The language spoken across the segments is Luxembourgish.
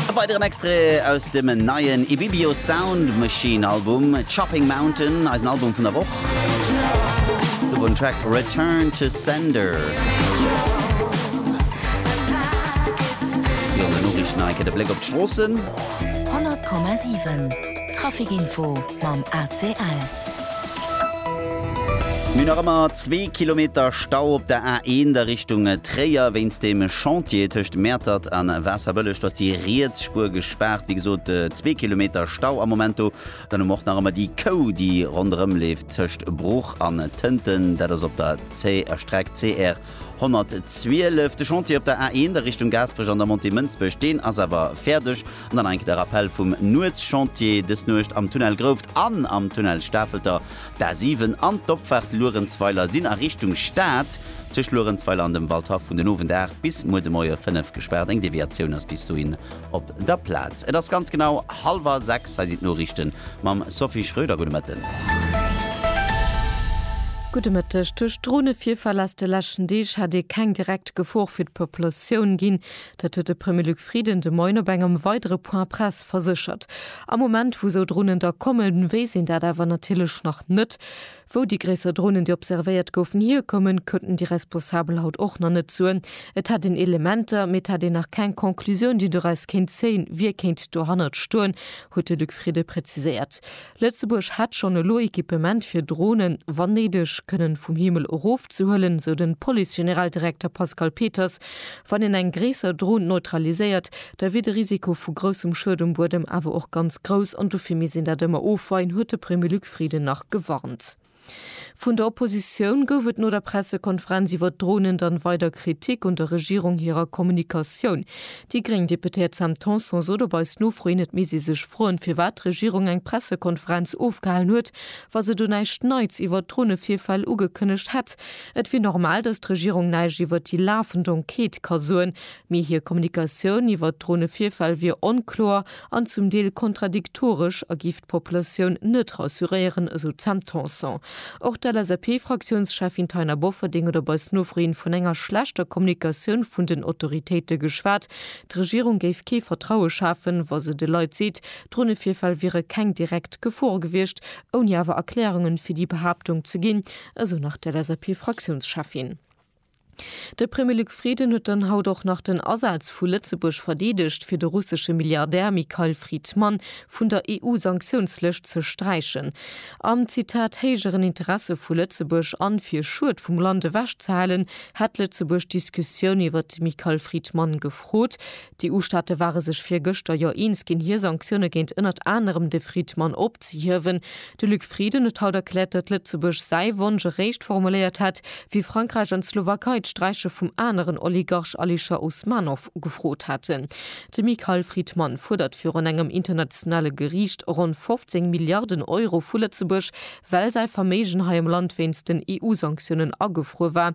E weideren Extrait aus dem neien Ibibio Sound Machine Album, Chopping Mountain, eisen Album vun der Woch. Do wor den Track Return to Sender. Virun den Noriichten hei kritt e Bléck op d'Stroossen. 100,7 Traffic Info mam ACL. Mir hu nach ëmmer zwee Kilometer Stau op der A1 a Richtung Tréier. Wéinst dem Chantier tëscht Mäertert a Waasserbëlleg ass déi riets Spuer gespaart. Wéi gesot, zwee Kilometer Stau am Moment do. Dann hu mer och nach ëmmer déi Kou, déi ronderëm leeft tëscht Bruch an Tënten. Dat ass op der Streck CR 112, De Chantier op der A1 a Richtung Gaasperech an der Montée Mënsbech, deen ass awer fäerdeg. An dann nach eng Kéier de Rappell vum Nuetschantier dës Nuecht, Am Tunnel Grouft an am Tunnel Stafelter, d'A7 an d'Opfaart Luerenzweiler sinn a Richtung Stad tëscht Luerenzweiler an dem Waldhaff vun den Owend 8 bis muer de Moie 5 gespaart. Eng Deviatioun ass bis dohin op der Plaz. Et ass ganz genau hallwer 6, hei sinn d'Noriichten mam Sophie Schröder. Gudde Mëtten. Gudde Mëtteg. Duerch Dronevirfäll aus de leschten Deeg hätt ee keng direkt Gefor fir d'Populatioun ginn. Dat huet de Premier Luc Frieden de Moien op engem weidere Point Presse verséchert. Am Moment, wou esou Dronen da kommen, weess een dat awer natierlech nach net. Wou déi gréisser Dronen, déi observéiert goufen, hierkommen, kënnten déi Responsabel haut och nach net soen. Et hätt een Elementer, mee et hätt een nach keng Conclusioun, déi doraus kéint zéien, wie kéint dohannert stoen, huet de Luc Frieden preziséiert. Lëtzebuerg hätt schonn elo Equipement, fir Dronen, wann néideg, kënnen vum Himmel erofzehuelen, sou de Police-Generaldirekter Pascal Peters. Wann een eng gréisser Dron neutraliséiert, da wier de Risiko vu groussem Schued um Buedem awer och ganz grouss an dofir misst een dat ëmmer ofweien, huet de Premier Frieden nach gewarnt. Vun der Oppositioun gouf et no der Pressekonferenz iwwer d'Dronen dann weider Kritik un der Regierung hirer Kommunikatioun. Déi gréng Deputéiert Sam Tanson sot op eis Nofro hin, et misst ee sech froen, firwat d'Regierung eng Pressekonferenz ofgehalen huet, wa se do näischt Neits iwwer d'Dronevirfäll ugekënnegt hätt. Et wier normal, datt d'Regierung näischt iwwer déi lafend Enquête ka soen, mee hir Kommunikatioun iwwer d'Dronevirfäll wier onkloer an zum Deel kontradiktoresch a gi. d'Populatioun net rassuréieren, esou d'Sam Tanson. Och d'LSAP-Fraktiounscheffin Taina Bofferding huet op eis Nofro hin vun enger schlechter Kommunikatioun vun den Autoritéite geschwat. D'Regierung géif kee Vertraue schafen, wa se de Leit seet, Dronevirfäll wiere keng direkt Gefor gewiescht, ouni awer Erklärungen fir déi Behaaptung ze ginn, esou nach d'LSAP-Fraktiounscheffin. De Premier Luc Frieden huet dann haut och nach den Asaz vu Lëtzebuerg verdeedegt, fir de russesche Milliardär Mikhail Fridman vun der EU-Sanktiounslëscht ze sträichen. Am, Zitat, héijeren Interesse vu Lëtzebuerg an fir Schued vum Land ewechzehalen, hätt Lëtzebuerg d'Diskussioun iwwert de Mikhail Fridman gefrot, D'EU-Staate ware sech virgëschter jo eens ginn, hir Sanktioune géint ënnert anerem de Friedmann opzehiewen. De Luc Frieden huet haut erkläert, datt Lëtzebuerg säi Wonsch eréischt formuléiert hätt, wéi Frankräich an d'Slowakei d'Sträiche vum aneren Oligarch Alisher Usmanov ugefrot hätten. De Mikhail Fridman fuerdert virun engem internationale Geriicht ronn 15 Milliarden Euro vu Lëtzebuerg, well säi Verméigen hei am Land wéinst den EU-Sanktiounen agefruer war.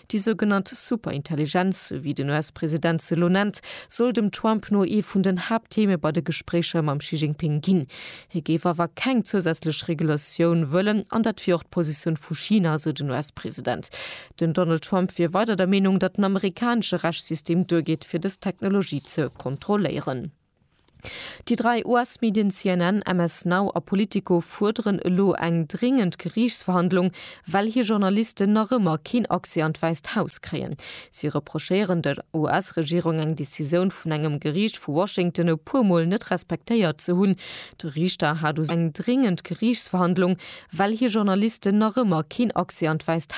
Déi sougenannt Superintelligenz, sou wéi den US-President se elo nennt, soll dem Trump no ee vun den Haapttheme bei de Gespréicher mam Xi Jinping ginn. Hie géif awer keng zousätzlech Regulatioun wëllen an dat wier och d'Positioun vu China, esou den US-President. Den Donald Trump wier weider der Meenung, datt den amerikanesche Rechtssystem duergeet, fir dës Technologie ze kontrolléieren. Déi dräi US-Medien CNN, MS Now a Politico fuerderen elo eng dringend Geriichtsverhandlung, well hir Journalisten nach ëmmer keen Accès an d'Wäisst Haus kréien. Si reprochéieren der US-Regierung eng Decisioun vun engem Geriicht vu Washington e puer Mol net respektéiert ze hunn. De Riichter hat u sech eng dringend Geriichtsverhandlung, well hir Journalisten nach ëmmer keen Accès an d'Wäisst.